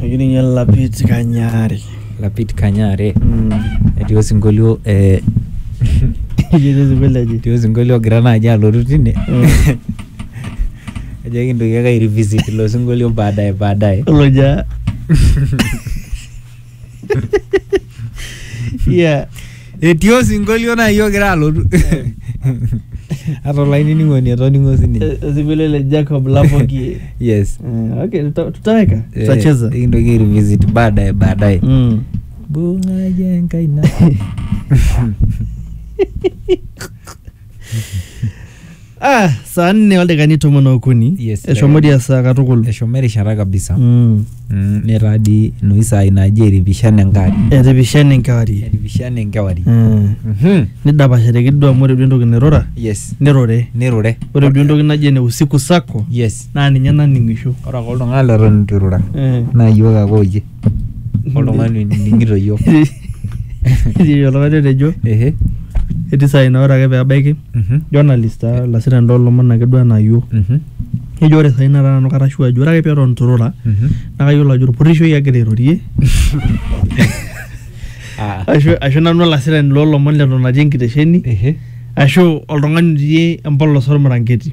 Ekininye Lapit Kanyari. Lapit Kanyare etii osinkolio eh, etii osinkolio ogira naaji alotu tine ajo ekintoki ake ai revisit ilo sinkolio baadaye baadaye. Oloja. Yeah. etii osinkolio naaji ogira alotu ata olainining'oni etoning'o sininye Eh, Osinkolio le Jacob Lapoki. yes Eh, okay, tuta- tutaweka. Eh, Tutacheza. nikintoki airevisit baadaye baadaye Mm. bungaye enkaina ah, saa nne oldakikani tomon okuni Yes, eshomo dia saa katukul eshomo erishata kabisa Mm. Mm, netaa dii inoshi saai naaji eripishana enkewarie etipishana enkewarie eripishana enkewarie Mm. Mhm. nidapashateki duo amu ore duo entoki nairura yes nirure nirure ore duo entoki naji ene usiku sako yes naa ninye naning'isho ore ake oltung'ani leton itu irura Eh. naa yiok ake oyie oltung'ani onining'ito yiok Etii oltung'ani otejo ehe etii saai naa ore ake pebaiki mhm, journalist taa olasirani loolomon ake duo enaa yiok mhm, nejo ore saai nataa nanu kara sure ajo ore ake peton itu irura mhm. naa kayiolo ajo orpurrishoi agira airorie Ah, ashu ashu nanu olasirani loolomon leton atii enkitesheni ehe ashu oltung'ani otii empolos ormiranketi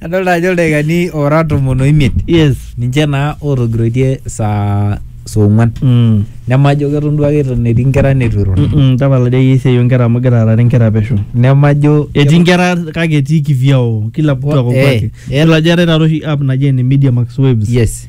Adolta ajo ildaikani ora tomon oimiet yes ninche naa otogiroitie saa saa ong'uan mm. nemajo keton duake eton etii inkera netu irura Mm -mm, tapala dei iyie esiai onkera amu igira aarare inkera pesho nemajo etii inkera kake etii kivyao kila mtu ako Eh, kwake eh. yiolo ajo eetae taata oshi app naji ene media max waves yes